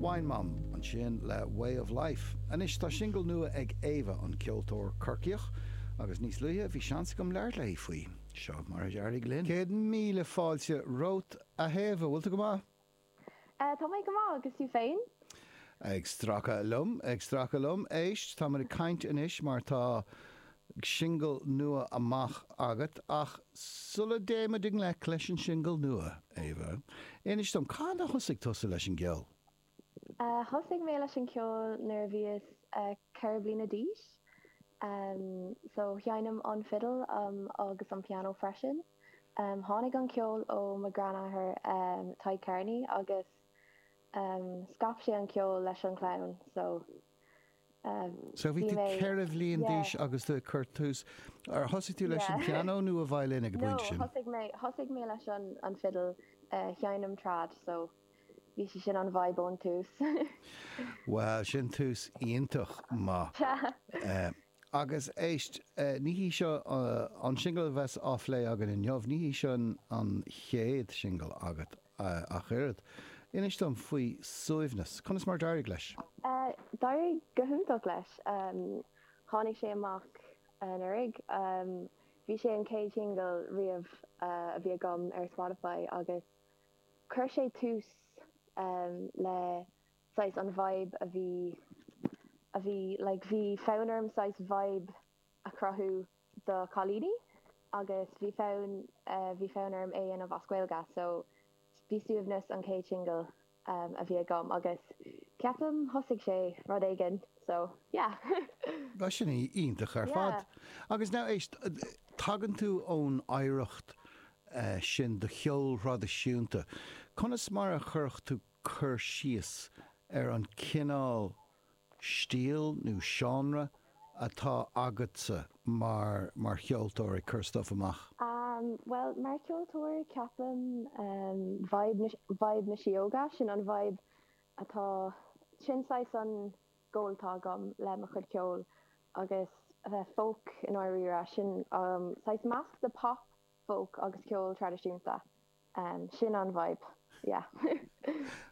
Wine Mum, ansin le Way of Life. Anois tá singil nua ag Éabha, an ceoltóir Corcaíoch, agus níos luaithe bhí seans agam labhairt léi faoi. Seo mar a d'éirigh linn. Céad míle fáilte romhat, a Éabha. Bhfuil tú go maith? Tá mé go maith, agus tú féin? Ag stracadh liom, ag stracadh liom. Éist, tá muid ag caint anois mar tá singil nua amach agat ach sula dtéimid i ngleic leis an singil nua, Éabha, inis dom, cathain a thosaigh tusa leis an gceol? Thosaigh mé leis an gceol nuair a bhíos ceithre bliana d'aois. So, seinnim an fidil agus an pianó freisin. Tháinig an ceol ó mo ghranathair Tadhg Kearney agus scaip sé an ceol leis an chlann. So. So bhí tú ceithre bhliain d'aois agus tú ag cur tús, ar thosaigh tú leis an pianó nó an violin ag an bpointe sin? No, thosaigh mé leis an fidil, sheinn mé trad, so bhí sé sin an vibe ón tús. Well, sin tús iontach maith. Agus éist, ní hé seo an singil a bheas á phlé againn inniu, ní hé seo an chéad singil agat ach oiread. Inis dom faoi Suaimhneas, conas mar a d'éirigh leis? D'éirigh go hiontach leis. Tháinig sé amach anuraidh. Bhí sé an chéad singil riamh a bhí agam ar Spotify agus chuir sé tús le saghas an vibe a bhí a bhí like bhí fonn orm saghas vibe a chruthú do chailíní agus bhí fonn eh bhí fonn orm é a dhéanamh as Gaeilge so bhí Suaimhneas an chéad singil a bhí agam agus ceapaim thosaigh sé rud éigin so yeah. Bhuel sin iontach ar fad. Yeah. Agus now éist tagann tú ón oidhreacht eh sin do cheol thraidisiúnta conas mar a chuirfeá cur síos ar an cineál stíl nó seánra atá agatsa mar, mar cheoltóir ag cur stuif amach? Am, bhuel, mar cheoltóir ceapaim vibe na, vibe na síóga, sin an vibe atá, sin saghas an goal atá agam le mo chuid ceoil agus a bheith folk i ndáiríre, sin saghas measc de pop, folk agus ceol traidisiúnta. Sin an vibe, yeah.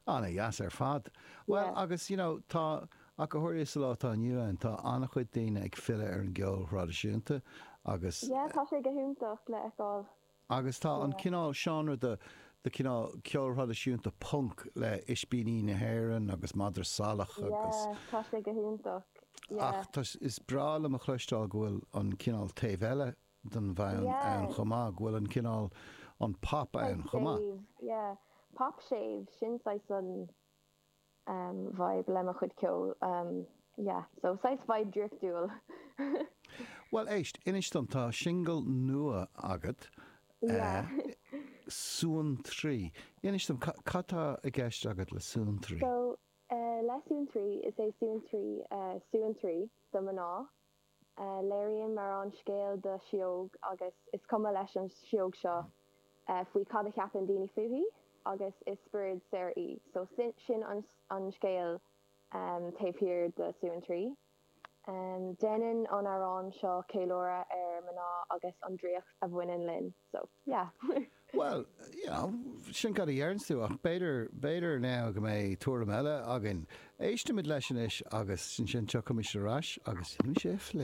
Ana-dheas ar fad. Bhuel agus you know tá, ach go háirithe sa lá atá inniu ann, tá ana-chuid daoine ag filleadh ar an gceol thraidisiúnta agus. Yeah tá sé go hiontach le fheiceáil. Agus tá an cineál seánra de, de chineál ceol thraidisiúnta punc le Ispíní na hÉireann agus Madra Salach agus. Yeah tá sé go hiontach, yeah. Ach tá, is breá liom a chloisteáil go bhfuil an cineál taobh eile den bhfonn ann chomh maith, go bhfuil an cineál, an pop ann chomh maith. séimh, yeah. Pop séimh, sin saghas an vibe le mo chuid ceoil, em yeah. So saghas vibe draiftiúil. Bhuel éist, inis dom, tá singil nua agat, Yeah. Suantraí. Inis dom, ca, cad tá i gceist agat le Suantraí? So eh le Suantraí, is é Suantraí eh suantraí do mná. Léiríonn m'amhrán scéal do Shióg agus is cuma leis an Sióg seo faoi cad a cheapann daoine fúithi agus is spiorad saor í so sin an scéal taobh thiar de Suantraí. Déanann an amhrán seo ceiliúradh ar mná agus an draíocht a bhaineann linn. So, yeah. Bhuel, you know, sin cad a deireann tú ach b'fhéidir, b'fhéidir now go mbeidh tuairim eile againn. Éistimid leis anois agus ansin tiocfaimid ar ais agus déanfaimid é a phlé.